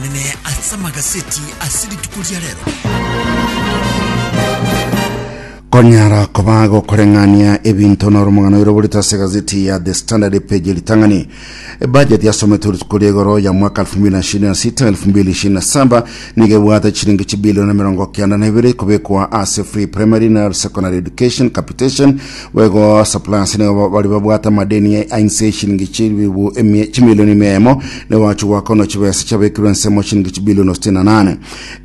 Nene ase amagaseti ase rituko ria rero. konyara koba gokoreng'ania ebinto noro omogano oiro oborito ase gazeti ya the standard epeji ritang'ani ebajeti yasometwe rituko ria igoro ya mwaka 2026 2027 nigo ebwate chiringi chibilioni mirongo kenda na ibere kobekwa ase free primary na secondary education capitation Bo igo Saplasi nigo bari babwate amadeni a inse y'eshilingi chiribu emia- chimilioni emia emo, nigo bachia goakanwa chibesa chiabekirwe ensemo shilingi chibilioni sitini na nane.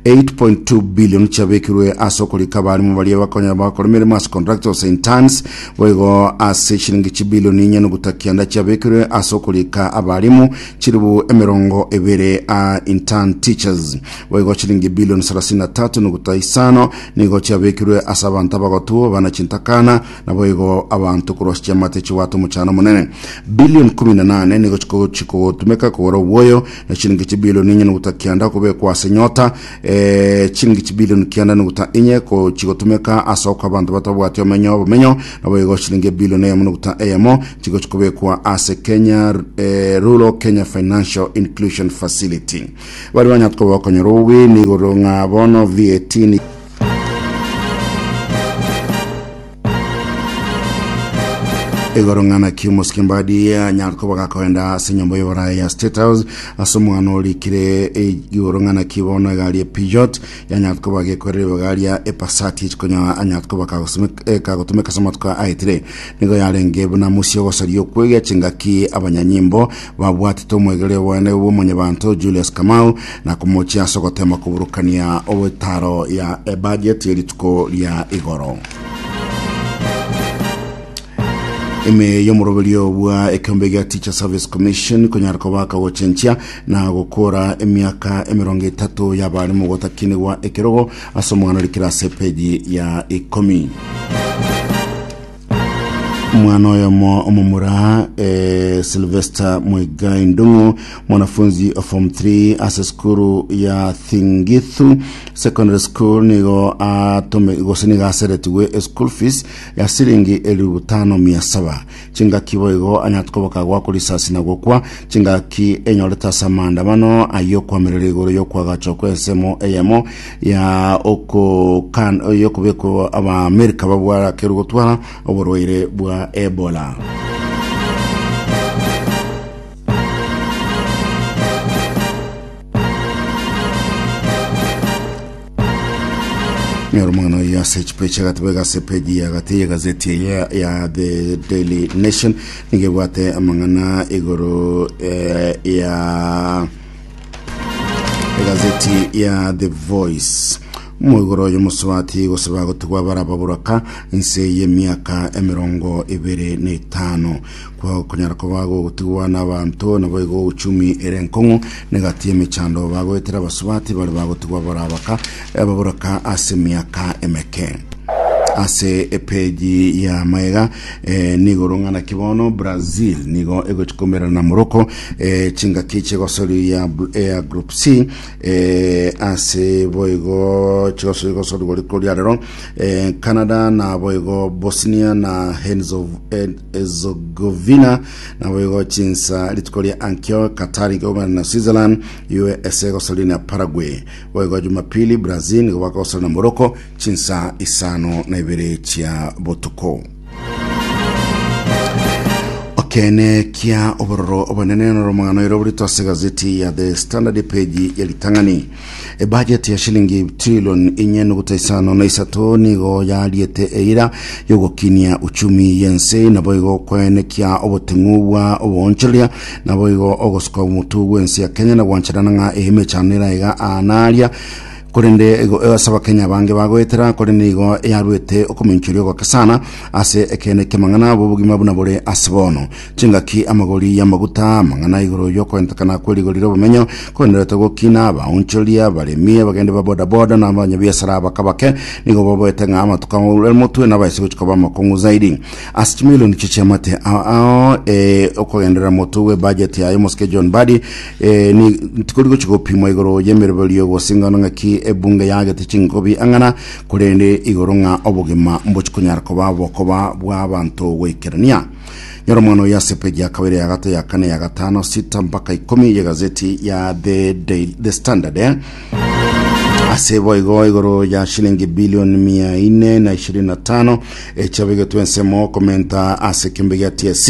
8.2 bilioni chiabekirwe ase okorika abarimo baria bakonya bakora emeremo ase contractors interns. Bo igo ase shilingi chibilioni inye noguta kianda chiabekirwe ase okorika abarimo chiribu emerongo ebere a intern teachers. Bo igo shilingi bilioni sarasini na tatu noguta isano Nigo chiabekirwe ase abanto abagotwo, bana chintakana, naboigo abanto korwa ase chiamate chigwata omochano omonene. Billion ikomi na nane nigo chiko- chikogotumeka kogora obwoyo, na chiringi chibilion inye nuguta kianda kobekwa ase nyota. Eh, chiringi chibilion kianda nuguta inye ko- chigotumeka ase oka abanto batabwati omenyo obomenyo, naboigo chiringi ebilion eyemo nuguta eyemo chigo chikobekwa ase Kenya eh, Rural Kenya Financial Inclusion Facility. Baria banyare koba okonyora obweene igoro ng'a bono VAT ni. igoro ng'a naki omosike mbadi anyare koba gakoenda ase enyomba y'oborae ya state house ase omwana orikire igoro ng'a naki bono egari epijot yanyare koba gekwerera ebaga epasati echikonyaa anyare koba kagosime- kagotumeka ase amatuko aetire nigo yarenge buna musie ogosaria okwegia chingaki abanyanyimbo babwatete omwegerero bwane bw'omonyebanto Julius Kamau na komochia ase ogotema koburukania obwetaro ya ebudget ye rituko ria igoro. ime y'omoroberio bwa ekeombe gia Teacher Service Commission konyara kobaka gochenchia na gokora emiaka emerongo etato y'abarimu gotakinigwa ekerogo ase omwana orikire ase epeji ya ikomi. Mwana oyomo omomura eh, Sylvester Muigai Ndung'u mwanafunzi of form 3 ase skuru ya Thingithu Secondary School nigo atome gose nigo aseretigwe e school fees ya silingi elifu butano mia saba chingaki boigo anyate koboka gwakwa risasi na gokwa chingaki enyorete ase amaandamano ayio kwamerera igoro yokwagacho kw'ensemo eyemo ya okokan yokobekwa abaamerika babwarakerwe gotwara oborwaire bwa ebola nyora omwana oyo ase echipo echiagatebe gase peji yagati yegazeti eye ya the daily nation nigo ebwate amang'ana igoro eh, ya egazeti ya the voice moigoro y'omosubati gosaba gotigwa barababuraka nse y'emiaka emerongo ebere na etano kwa kunyara kuba gogotigwa n'abanto nabo igo uchumi ere nkong'u negati emechando bagoetera abasubati bari bagotigwa barabaka ababuraka ase emiaka emeke ase epeji ya maega Eh, nigo rong'a naki bono brazil nigo egochi komerana na morocco eh, chingaki chigosoria bl- ea group c eh, ase boigo chigosoria gosori gori koria rero eh, canada na boigo bosnia na herzegovina na boigo chinsa rituko ria ankio qatar igomerana na switzerland usa gosoria na paraguay boigo jumapili brazil nigo bakogosoria na morocco Chinsa isano na ibere chia botuko. Okeene kia obororo obonene noromang'ano ero oborito ase gazeti ya The Standard page ya ritang'ani. Ebajeti ya shilingi trilion inye nuguta isano na isato nigo yariete eira yogokinia uchumi yense naboigo kwaenekia oboteng'u bwa oboonchoreria naboigo ogosuka omotu bwense ya Kenya na gwancherana ng'a emechano eraiga anaria korende ego ase abakenya bange bagoetera, korende nigo yaruete okomoinchoria ogokesana ase ekeene ki'amang'ana abo obogima buna bore ase bono. Chingaki amagori y'amaguta, amang'ana igoro y'okoentekana kw'erigori ri'obomenyo, koenderete gokina abaonchori, abaremi, abagendi ba bodaboda, na abanyabiasara abakabake, nigo baboete ng'a amatuko aure motwe nabo aise gochia koba amakong'u zaidi. Ase chimilioni chie chiamate a- ao, ee, okogenderera motwe bw'ebajeti yaye, omosike John Mbadi Ee, ni tikori gochi gopimwa igoro y'emeroberio gose ing'ano ng'aki ebunge yagete chinkobi ang'ana, korende igoro ng'a obogima mbochi konyara koba bokoba bw'abanto goikerania. Nyora omwana oyo ase peji ya kabere, ya gato, ya kane, ya gatano, sita mpaka ikomi y'egazeti ya The, Daily, The Standard. eh? ase boigo igoro ya shilingi bilioni mia ine na ishirini na tano echabegetwe ensemo komenta ase ekiombe gia TSC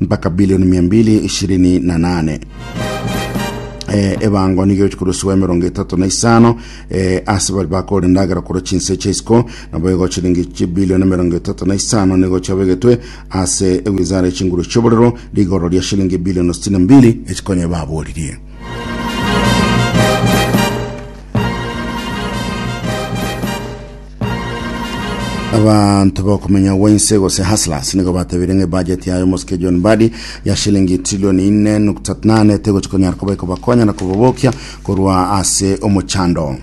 mpaka bilioni mia mbili ishirini na nane eh, ebango nigo egochikorusiwa emerongo etato na isano eh, ase bari bakore endagera korwa chinse chia isiko nabo igo chiringi chibilioni emerongo etato na isano nigo chiabegetwe ase ewizara echinguru chioborero rigoro ria shilingi bilioni sitini na mbili echikonya baboririe Abanto bakomenya Wense gose Hustlers nigo batabire ng'a ebajeti yayo omosike John Mbadi ya shilingi trilioni ine nukta nane tegochi konyara koba ekobakonya na kobabokia korwa ase omochando.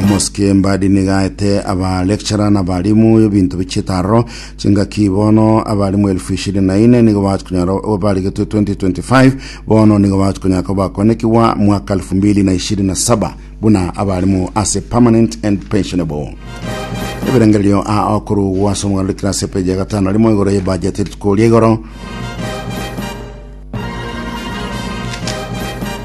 Omosike Mbadi niga aete aba lecturer na abalimu ebinto bichiete aroro chingaki bono abalimu elfu ishirini na ine nigo bachi konyara barigetwe 2025 bono nigo bachi konyara koba bakonekigwa mwaka elfu mbili na ishirini na saba buna abarimu ase permanent and pensionable ebirengererio a okorugwa ase omoganda kira ase epeji ya gatano rimo igoro ye budget rituko ria igoro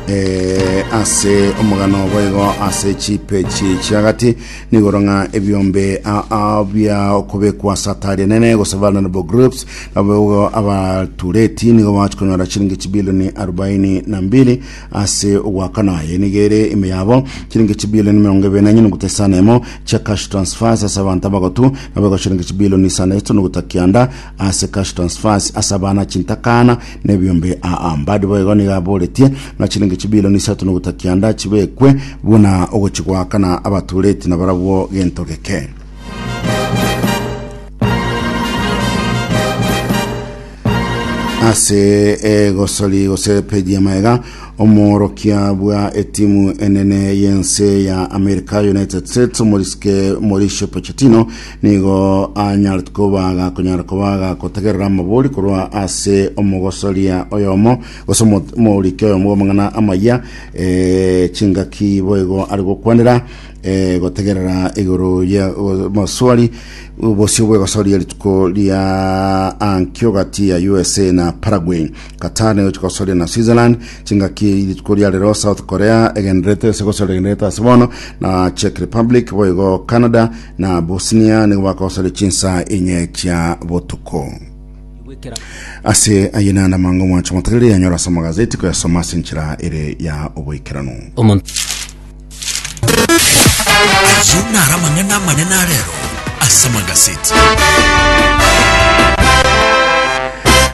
Eh, ase omogano obo igo ase chipechi chiagati nigoro ng'a ebiombe a- a- bia okobekwa ase atari enene gose vulnerable groups nabo igo abatureti nigo bachikonyora chiringi chibilioni arobaini na mbili ase ogoakana aye nigo ere ime yabo chilingi chibilioni emerongo ebere na nyenuguta isano emo chia cash transfers ase abanto abagotu nabo ego chilingi chibilioni isano eto nuguta kianda ase cash transfers ase abana chintakana na ebiombe aa mbadi bo igo nigo aboretie na chilingi chibilioni isato nuguta kianda chibekwe buna ogochigoakana abatureti na barabwo gento geke ase egosori gose peji ya maega omworokia bwa etimu enene y'ense ya america united states omoriske mauricio pochettino nigo anyarete koba gakonyara koba gakotegerera amabori korwa ase omogosoria oyomo gose omo- omorike oyomo bw'amang'ana amaya eh, chingaki boigo ari gokwanera Eh, gotegerera igoro ya o- moswari bosio bwegosoria rituko ria ankio gati ya usa na paraguay qatar nayo chigosoria na switzerland chingaki rituko ria rero south korea egenderete ase gosoria egenderete ase bono na czech republic boigo canada na bosnia nigo bakosoria chinsa enye chia botuko gwekera ase aye nana mango mwacho motegereri yanyora ase amagazeti koyasoma ase enchera ere ya oboikeranu omonto Ayio naro amang'ana amanene a rero ase magaseti.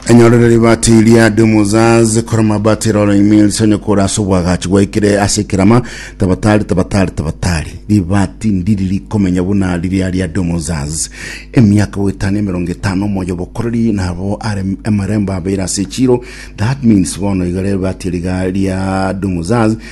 enyorero ribati ria dumuzaz koroma bati rolling mill sonye kora ase obwagachi gwaikire ase ekerama tabatari tabatari tabatari ribati ndiri rikomenya buna riria ria dumuzaz emiaka goetano emerongo etano omoyo bokoreri nabo are amarembo abeire ase echiro that means bono iga rero ribati riga ria dumuzaz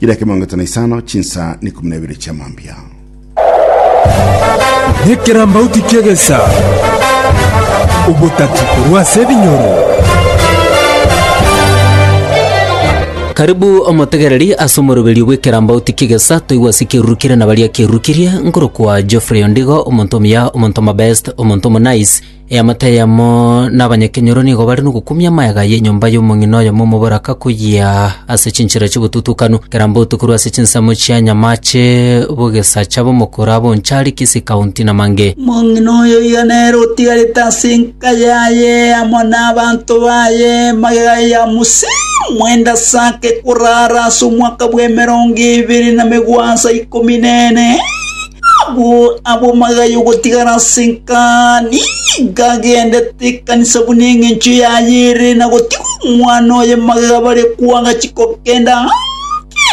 Chire eke miongo eto na isano, chinsa na ikomi na ibere chia mambia. Nekerambauti ki'egesa, obotati korwa ase ebinyoro. Karibu omotegereri ase omoroberio bw'ekerambauti ki'egesa toigwe ase ekerurukire na baria kerurukirie nkorokwa Geoffrey Ondigo, omonto omuya, omonto omobest, omonto omonice, Eamate eyemo n'abanyakenyoro nigo bare nogokumia amaega y'enyomba y'omong'ina oyomo omoboraka koyia ase chinchera chi'obotutukanu, kera botuko rwa ase chinsemo chia nyamache b'ogesacha b'omokoro abonchari Kisii County na Mange. Omong'ina oyoyio nere otigarete ase enka yaye amo n'abanto baye magega ya Musa mwende asake korara ase omwaka bw'emerongo ebere na megwansa ikomi nene. Agwo abwo magaya ogotigara ase enkani, gagendete ekanisa buna engencho yaye ere, na gotiga omwana oye magega bare kw'agachi kogenda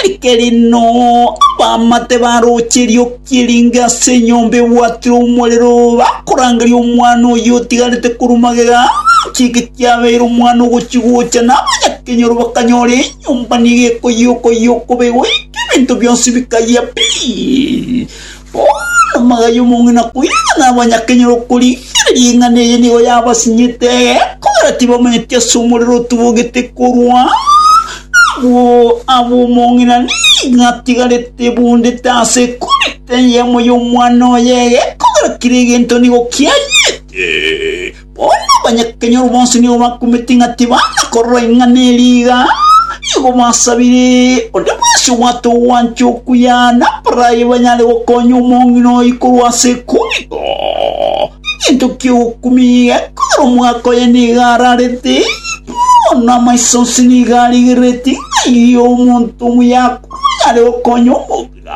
keri keri no abamate baroche erioki eringe ase enyomba ebwatirwe omorero, bakorangeria omwana oyio otigarete korwa magega, chiika kiabeire omwana ogochi gocha, na abanyakenyoro bakanyora enchera. Enyomba nigo ekoiyia-okoiyia okobe goika ebinto bionsi bikayia pi. Bono magaiyo y'omong'ina koirana nabanyakenya okorigereria ing'ana eye nigo yabasinyete kogera tibamanyeti ase omorero otubogete korwa abwo ab'omong'ina nigo atigarete ebundete ase ekoreta eyemo y'omwana oye egekogera kera egento nigo kiayete. Bono abanyakenyoro bonsi nigo bakumete ng'a tibanga korora ing'ana eria iga, nigo basabire onde bwesi obwate ogwancha okuya naboro aye banyare gokonya omong'ina oye korwa ase ekumigwa. Egento ki'ogokumia gekogera omogaka oye nigo ararete, bono amaiso onsi nigo arigereretie ng'a omonto omuya akure onyare gokonya omong'ina.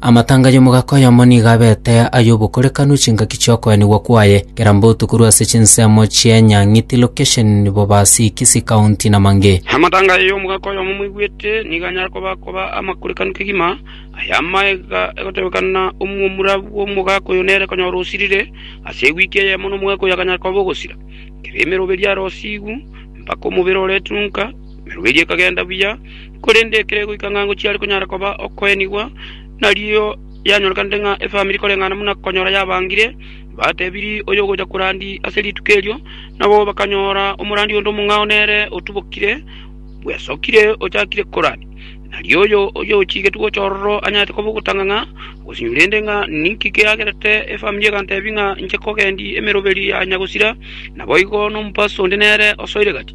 Amatanga y'omogaka oyomo nigo abete ay'obokorekanu chingaki chi'okoenigwa kwaye, kera mbotu korwa ase chinsemo chi'enyang'iti, location, Bobasi, Kisii County, na mang'e. Amatanga y'omogaka oyomo omoigwete nigo anyare koba koba amakorekanu kegima, aya amaiga egotebekana, omwomura bw'omogaka oyo nere konyora osirire ase ewiki eyemo na omogaka oyo akanyara koba ogosira, kera emeroberio arosigwe, mpaka omobere oretunka, Emerogo eria ekagenda buya, korende ekero egoika ng'a ngochiare konyara koba okoenigwa, narioo yanyorekanete ng'a efamiri koreng'ana buna konyora yabangire, batebirie oyogocha korandi ase rituko erio, nabo bakanyora omorandi onde omong'ao nere otubokire, bwesokire ochakire korani. Narioo oyo oyochigetwe gocha ororo anyarete koba ogotanga ng'a ogosinywa rende ng'a ninki keagerete efamiri egantebia ng'a inche kogendi emeroberi ya nyagosira, naboigo nomopasu onde nere osoire gati.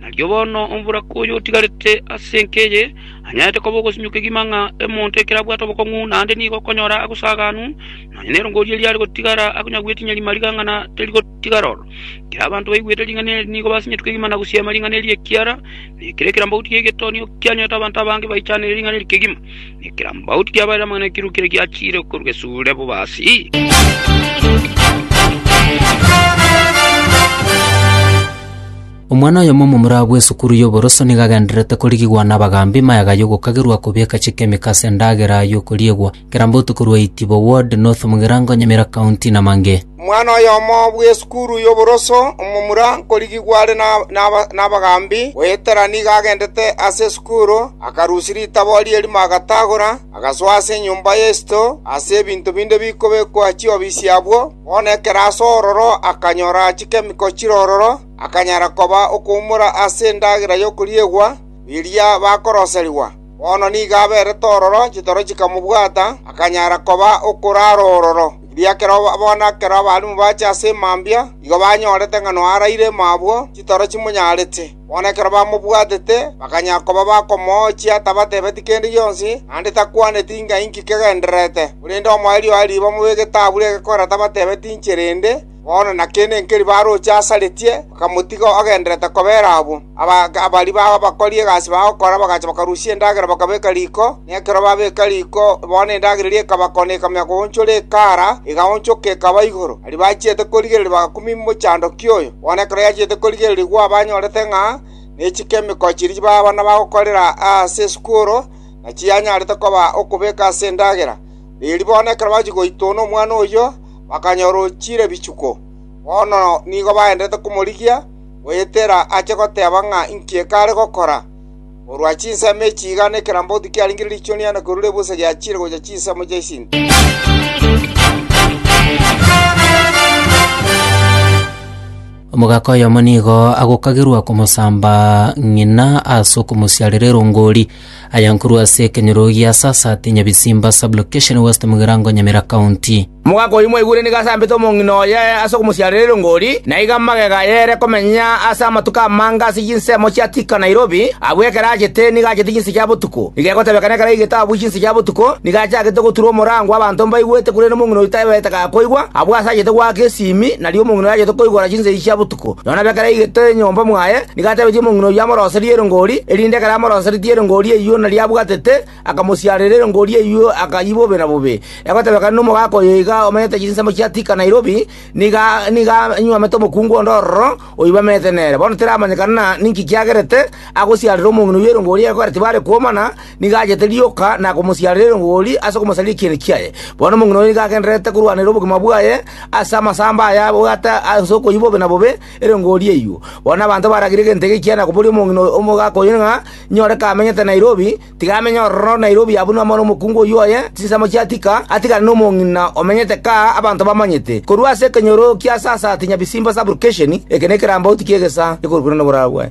Narioo bono omboraka oyo otigarete ase enka eye anyarete koba ogosimia okegima ng'a omonto ekero abwate obokong'u naende nigo okonyora agosaganu, nonya nerongo riria riare gotigara akonyagwe tinya rimarigang'ana terigotigara ororo. Ekero abanto baigwete ring'ana eri nigo basinyeti kegima na gosiama ring'ana eri ekiara nekero ekerambauti gie getonio kianyorete abanto abange baichanere ring'ana eri kegima, na ekerambauti kiabarire amang'ana ekiruki ere giachiire korwa esure bobasi. Omwana oyomo omomura bw'esukuru y'oboroso nigo agendererete korigigwa nabagaambi mayaga y'ogokagerwa kobeka chikemiko ase endagera y'okoriegwa kera botuko rwa Itibo Ward, North Mugirango, Nyamira County, Namange. Omwana oyomo bw'esukuru y'oboroso omomura nkorigigwa are nabagaambi, goetera nigo agendete ase esukuru, akarusia ritabo ri'erimo agatagora, agasoa ase enyomba y'esito ase ebinto binde bikobekwa chiofisi abwo, bono ekero asoa ororo akanyora chikemiko chire ororo, akanyara koba okoumora ase endagera y'okoriegwa riria bakoroserigwa. Bono nigo aberete ororo chitoro chikamobwata, akanyara koba okoraara ororo, ekiagera ekero bono ekero abarimu bache ase mambia nigo banyorete ng'a noaraire mabwo chitoro chimonyarete. Bono ekero bamobwatete bakanyara koba bakomoochia tabatebeti kende gionsi, naende takwaneti ng'a inki kegendererete. Korende omoerio oye riba mobe egetabu ri'egekora tabatebeti inche rende, Bono naki nenkeri baroche asaretie, bakamotiga ogendererete kobera abwo. Ababari bao abakori egasi bagokora bagacha bakarusia endagera bakabeka riko, na ekero babeka riko bono endagera eria ekaba kona ekamia koonchora ekara, egaonchoka ekaba igoro. Aria bachiete korigereria bagakumia emochandoko oyo. Bono ekero yachiete korigereria gwao banyorete ng'a nechiko emekoo chiria baabana bagokorera ase esukuru nachiyanyarete koba okobeka ase endagera. Riiri bono ekero bachia goitwa one omwana oyio, bakanya orochire bichuko. Bono nigo bagendererete komorigia, goetera ache goteba ng'a inki ekare gokora. Korwa chinsemo echi iga nekerambauti kiarenge riichuni na korwa ebusa giachire gochia chinsemo chia isinto. Omogaka oyomo nigo agokagerwa komosamba ng'ina ase okomosiarera erongori, Aya nkorwa ase ekenyoro gia Sasat, Nyabisimba Sub-location, West Mugirango, Nyamira County. Omogaka oyio mwaigure nigo asambete omong'ina oye ase okomosiarera erongori, na igo amagega aye ere komenya ase amatuko amange ase chinsemo chia Thika Nairobi, abwo ekero achete nigo achete chinse chia botuko. Igo egotebekana ekero aigete abwo chinse chia botuko, nigo achagete goturwa omorango abanto mbaigwete korende omong'ina oyio taebete gakoigwa, abwo ase achete goaka esiimi, nario omong'ina oyo achete koigora chinse echi chia botuko. Nonya nabekero aigete enyomba mwaye, Nigo atebetie omong'ina oyio amoroserie erongori, erinde ekero amoroseretie erongori eyio nario abwatete, akamosiarera erongori eyio akayia bobe na bobe. Egotebekana nomogaka oyo iga omenyete chinsemo chia Thika Nairobi, nigo nigo anywomete omokungu onde ororo oibamete nere. Bono teramanyekana ninki kiagerete agosiarera omong'ina oyio erongori ekero tibare kwomana, nigo achete rioka na komosiarera erongori ase okomosaria ekieni kiaye. Bono omong'ina oyio nigo agendererete korwanera obogima bwaye ase amasamba aya abwate ase okoyia bobe na bobe, Ere ngoria eyuo, bono nabanto baragire gento eke ekiana koboria omong'ina omogaka oyo ng'a nyore kamenyete Nairobi, tiga amenye ororo Nairobi abunwe amo nomokungu oyio oye chinsemo chia Thika, atigane nomong'ina omenyete kaa abanto bamanyete. Korwa ase ekenyoro kia sasa ati Nyabisimba Sub-location, eke nekerambauti ki'egesaa ekorokirwe noborabwo.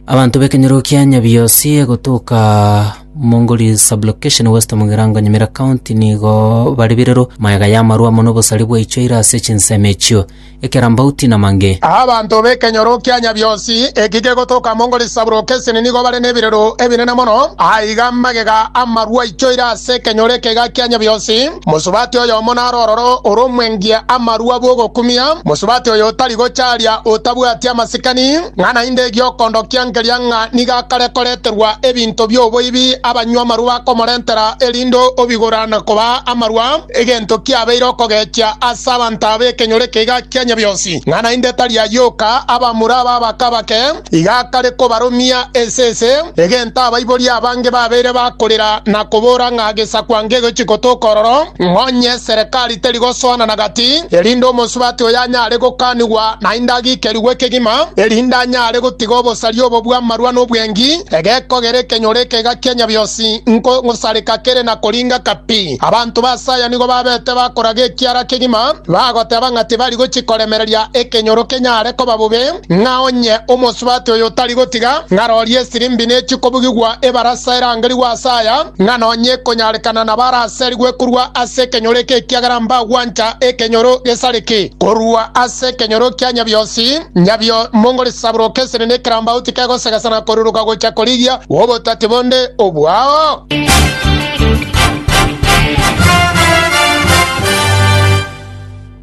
Abanto b'ekenyoro kia Nyabiosi gotoka Mongori Sub-location West Mugirango Nyamira County nigo bare birero magega y'amarwa amo nobosari bwaichoire ase chinsemo echio, ekerambauti na mange. Abanto b'ekenyoro kia Nyabiosi eki gegotoka Mongori Sub-location nigo bare nebirero ebinene mono, aiga magega amarwa aichoire ase ekenyoro eke iga kia Nyabiosi. Mosubati oyomo naro ororo oromwengie amarwa bw'ogokumia, mosubati oyo otari gocharia otabwati amasikani. Ng'a naende egi'okondokia nkeria ng'a nigo akare koreterwa ebinto bi'oboibi abanywamarua bakomorentera, erinde obigora na kobaa amarua, egento kiabeire okogechia ase abanto aba ekenyoro ekeiga kia Nyabionsi. Ng'a naende tari ayio oka, abamura aba abake abake iga akare kobarumia ense ense, egento abaibori abange babeire bakorera na kobora ng'a gesakwa ngegochi gotoka ororo, ng'onye eserekari etari gosoanana gati, erinde omosubati oyo anyare gokanigwa naende agiikerigwe ekegima, erinde anyare gotiga obosari obo bw'amarua na obwengi, egekogera ekenyoro ekega kia Nyabionsi nko ngosareka kere na koringa kapi. Abanto ba Saya nigo babete bakoraga ekiara kegima, bagoteba ng'a tibari gochia koremereria ekenyoro kenyare koba bobe. Ng'a onye omosubati oyo tari gotiga ng'arorie esirimbi nechie kobugigwa ebarasa erangerigwe ase aya, ng'a nonya ekonyarekana nabo araserigwe korwa ase ekenyoro eke ekiagera mbagwancha ekenyoro gesareke korwa ase ekenyoro kia Nyabionsi, Nyabio mongorisabroke esiri nekerambauti kegosegesa na koruruka gocha korigia obotati bonde obwao.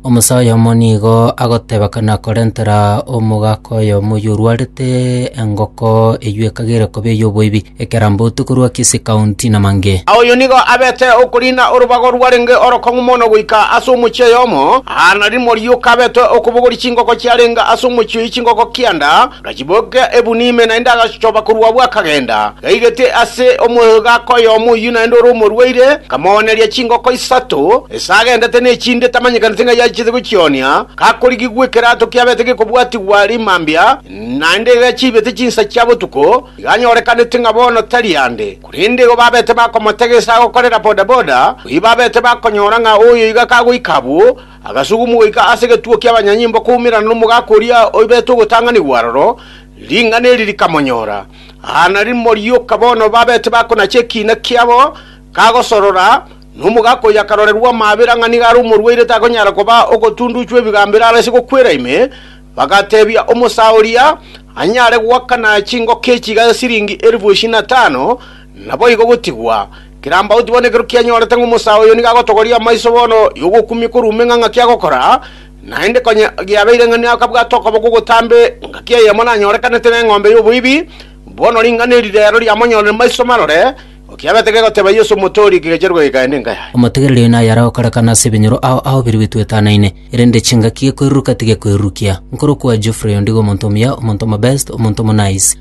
Omusa oyomo nigo agoteba na korentera omogaka oyomo oyio orwarete engoko eyio ekagera koba ey'oboibi, ekerambotu korwa Kisii County na Mange. Oyo nigo abete okoriina orobago rwarenge orokong'u mono goika ase omochie oyomo, aa na rimo rioka abete okobogoria chingoko chiarenge ase omochie oyio chingoko kianda, Agachibokia ebuni ime naende agachichoba korwa abwo akagenda, gaigete ase omoegaka oyomo oyio naende ore omorwaire, akamooneria chingoko isato, ase agendete nechinde tamanyekaneti ng'a yachete gochionia, gakorigigwa ekerato kiabete gekobwatigwa rimambia, naende gachiibete chinsa chia botuko, iga anyorekanete ng'a bono tari ande. Korende igo babete bakomotega ase agokorera bodaboda, oyio babete bakonyora ng'a oyo iga kagoika abwo, Agasugumwa goika ase egetuo ki'abanyanyimbo koumerana nomogaka oria oibete ogotang'anigwa aroro, ring'ana eri rikamonyora. Aa narimo rioka bono babete bakonacha ekiina kiabo, kagosorora, na omogaka oyio akarorerwa amaabera ng'a nigo are omorwaire takonyara koba ogotunduchwa ebigambero arese gokwera ime, bagateebia omosaa oria anyare goakana chingoko echi gase siringi elifu ishirini na tano, naboigo gotigwa. Kerambauti bono ekero kianyorete ng'a omosaa oyo nigo agotogoria amaiso bono y'ogokumia korwa ime ng'a ng'aki agokora, naende konya giabeire ng'a nakabwate okoboko ogotambe ngaki eyemo nanyorekanete neng'ombe y'oboibi, bono ring'ana eri reero riamonyorire maiso marore, okiabete gegoteeba Yeso Omotooria ekegecherwa eke kaende nkaya. Omotegereri oyo naye aragokorekana ase ebinyoro ao ahobirigwe twetanaine, erende chingaki gekoiruruka tigekoirurukia. Nkorokwa Geoffrey ondigo omonto omuya, omonto omobest, omonto omonice.